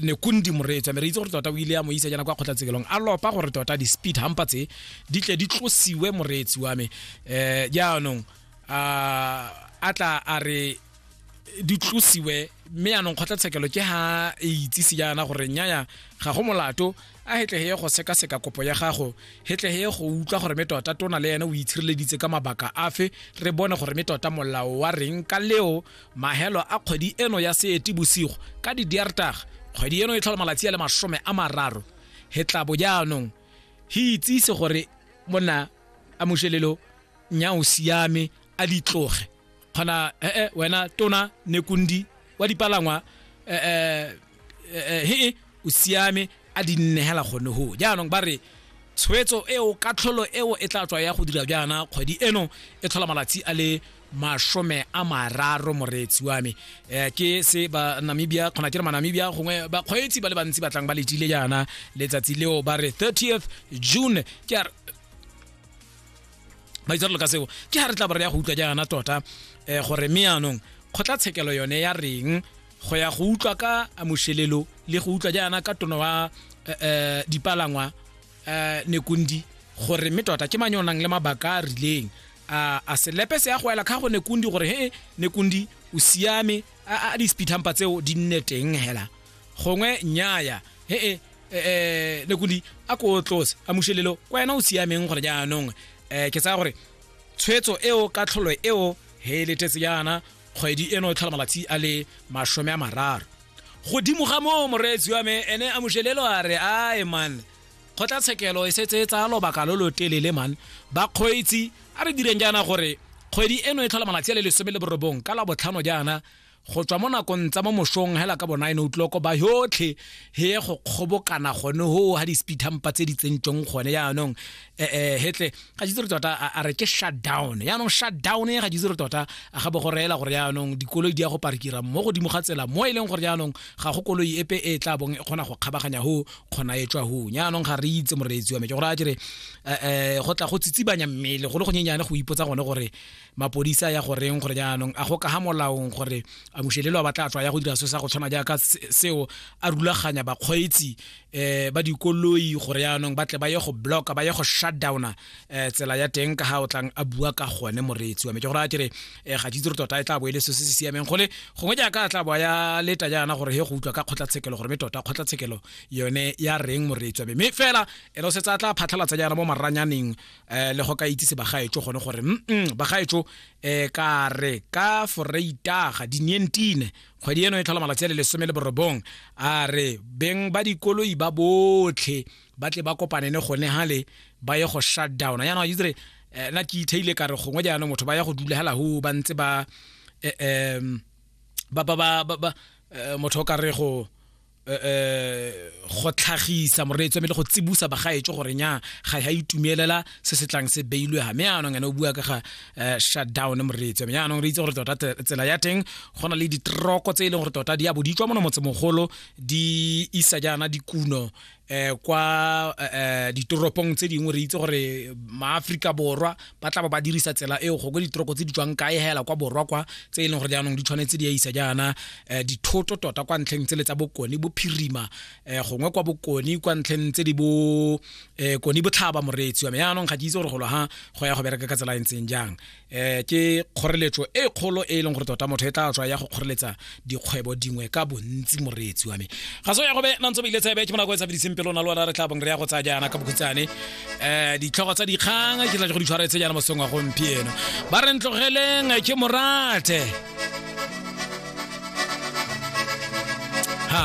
ne kundi moreetsa me re itse gore tota o ile ya mo isa jana kwa kgotlatsekelong a lopa gore tota di-speed hampa tse di tle di tlosiwe moreetsi wa me um jaanong a tla a re di tlosiwe mme yanong kgotlatshekelo ke ha e itsise jaana gore nyaya ga go molato a hetleheye go sekaseka kopo ya gago hetleheye go utlwa gore me tota tona le ene o itshireleditse ka mabaka afe re bone gore me tota molao wa reng ka leo mahelo a kgwedi eno ya seetibosigo ka didiartaga kgwedi eno e tlhola malatsi a le masome a mararo he tla bo jaanong he itsise gore monna a mošelelo nya o siame a ditloge kgona ee wena tona nekundi wa dipalangwa um eh, he e o siame a di nnegela gone go jaanong ba re tshwetso eo katlholo eo e tla tswa ya go dira jaana kgwedi eno e tlhola malatsi a le masome a mararo moreetsi wa me um ke se ba namibia kgona ke re manamibia gongwe bakgweetsi ba le bantsi batlang ba letile jaana letsatsi leo ba re 30th june ke a ba itse ka seo ke ga re tla ba re ya go utlwa jaana tota um gore me yaanong kgotlatshekelo yone ya reng go ya go utlwa ka amošelelo le go utlwa jaana ka tono wa eh, eh, dipalangwa eh, nekundi gore mme tota ke mang yo nang le mabaka a rileng a a selepe se ya go ela kha go nekundi gore he nekundi o siame a a dispithampa tseo di nne teng hela gongwe nyaya he e eh nekundi a ko tlose a mushelelo kwa yena o siameng gore jaanong eh ke tsaya gore tshwetso eo ka tlholo eo he letetse jaana kgwedi eno e tlhola malatsi a le masome a mararo godimo ga moo moreetsi wa me ene a mojelelo a re ae man kgotlatshekelo e setse e tsaya lobaka lo lo telele man bakgweetsi a re direng jaana gore kgwedi eno e tlhola malatsi a le lesome le borobong ka la botlhano jaana go tswa mo nakong tsa mo mosong hela ka bona eno utloko ba yotlhe he go kgobokana gone ho ha di-speed hampa tse di tsentsweng gone jaanong eh, eh, hetle ga itse re tota a re ke shutdown yaanong shutdown e ga itse re tota a ga bo go reela gore yaanong dikoloi di ya go parkira mo godimo ga tsela mo e leng gore yaanong ga go koloi epe e tla bong e kgona go kgabaganya ho kgona e tswa hong yaanong ga re itse moreetsi wa me ke gore a kere um eh, go tla go tsitsibanya mmele go le go nyenyane go ipotsa gone gore mapodisa ya goreng gore yaanong a go ka ga molaong gore a mushelelo a batla tswa ya go dira se sa go tshwana jaaka seo a rulaganya bakgweetsi eh ba dikoloi gore yaanong ba tle ba ye go blocka ba ye go shutdowna eh tsela ya teng ka ga o tlang a bua ka gone moreetsi wa me ke gore a kere eh ga jitse re tota e tla bo e le se se siameng gole gongwe jaaka a tla bo ya leta jaana gore he go utlwa ka kgotlatshekelo gore me tota kgotlatshekelo yone ya reng moreetsi wa me mme fela ene o setse a tla phatlhalatsa jaana mo maranyaneng eh le go ka itsise bagaetso gone gore mm bagaetso eh ka re ka foreitaga di 19 kgwedi eno e tlhola malatsi a le lesome le borobong a re beng ba dikoloi ba botlhe ba tle ba kopane ne gone gale ba ye go shutdown yana itse re eh, na ke itheile ka re gongwe jaanong motho ba ya go dula hela ho ba ntse ba eh, ba ba ba eh, motho o ka re go eh, eh, go tlhagisa moreetso mme le go tsibusa bagaetso gore nya ga ya itumelela se se tlang se beilwe ga mme anong ene o bua ka ga eh, shutdown moreetso mme anong re itse gore tota tsela ya teng go na le ditroko tse e leng gore tota di a bo di tswa mono motsemogolo di isa jaana dikuno eh kwa eh, eh, ditoropong tse dingwe re itse gore maaforika borwa ba tla ba ba dirisa tsela eo go kwe ditoroko tse di tswang kae hela kwa borwa kwa tse e leng gore jaanong di tshwanetse di a isa jaana eh, dithoto tota kwa ntlheng tsele tsa bokone bophirima eh, gongwe kwa bokone kwa ntlheng tse di bo eh, kone botlhaba moreetsi wa me jaanong ga ke itse gore golo ha go ya go bereka ka tsela e ntseng jang um ke kgoreletso e kgolo e e leng gore tota motho e tla tswa ya go kgoreletsa dikgwebo dingwe ka bontsi moreetsi wa me ga so ya go be nantse ba ile tsebe ke monako e tsabediseng pelo na lwana re tla bong re ya go tsaya jaana ka bokhutsane um ditlhogo tsa dikgang ke tla go di tshwaretse jaana mosong wa gompieno ba re ntlogeleng ke morate ha